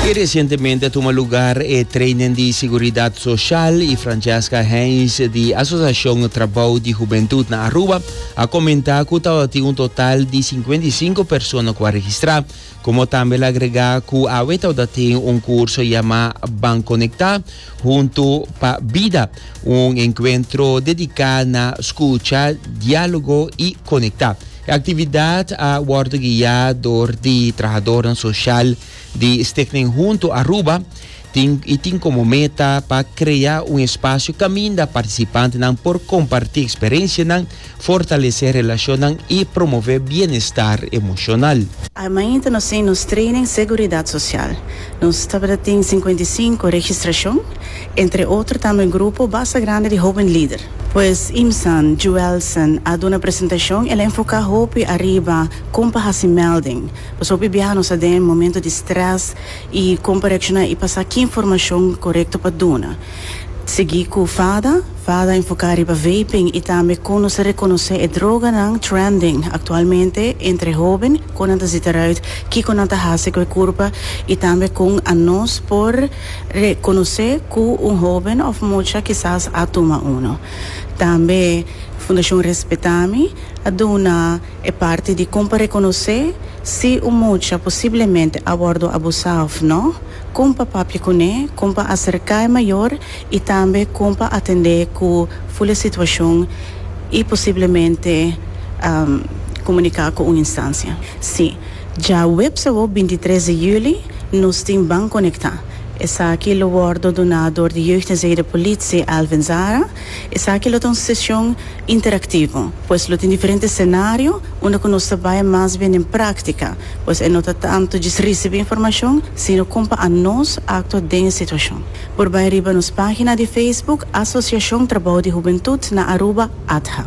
Y recientemente a tuma lugar e training di seguridad social y Francesca Heinz di Asociacion Trabao di Hubentud na Aruba a comenta cu tabatin un total di 55 persona cu a registra, como tambe el a agrega cu awe tabatin un curso yama Ban Conecta Hunto pa Bida, un encuentro dedica na scucha, dialogo y conecta. E actividad a wordo guia door di trahadornan social di Stichting Hunto Aruba tin y tin como meta pa crea un espacio caminda participantenan por comparti experiencianan, fortalece relacionnan y promove bienestar emocional. I mainta nos tin nos training seguridad social. Nos tabata tin cincuenta y cinco registracion. Entre otro tambe un grupo basta grandi di hoben lider. Pues Imsan, Juelsen, a duna presentacion, el a enfoca hopi ariba con pa haci melding. Pues hopi biaha nos ta den momento di stress y con pa reacciona y pa sa ki informacion corecto pa duna. Sigui cu Fada, Fada a enfoca riba vaping y tambe con nos ta reconoce e droganan trending actualmente entre e hoben, con nan ta sita eruit kico nan ta haci cu e curpa y tambe con anos por. Rekonosé ku un hóben òf mucha kisas a tuma unu. Tambe Fundashon Respetami a duna e parti di kon pa rekonosé si un mucha posiblemente a wòrdu abusá òf nò, kon pa papia kuné, kon pa aserká e mayor i tambe kon pa atendé ku ful e situashon i posiblemente komuniká ku un instansia. Si. Dja web Sabó bintitres di juli nos tin Ban Conecta. Esaki lo wòrdu duna dor di Jeugd en Zee-de Politie, Alvin Zara. Esaki lo ta un sesion interaktivo, pues lo tin diferente senario unda ku nos ta bai mas bien den práktika, pues e no ta tantu djis risibí informashon, sino kon pa anos aktua den e situashon. Por bai riba nos página di Facebook Asosiashon Trabou di Hubentut na Aruba, ATHA.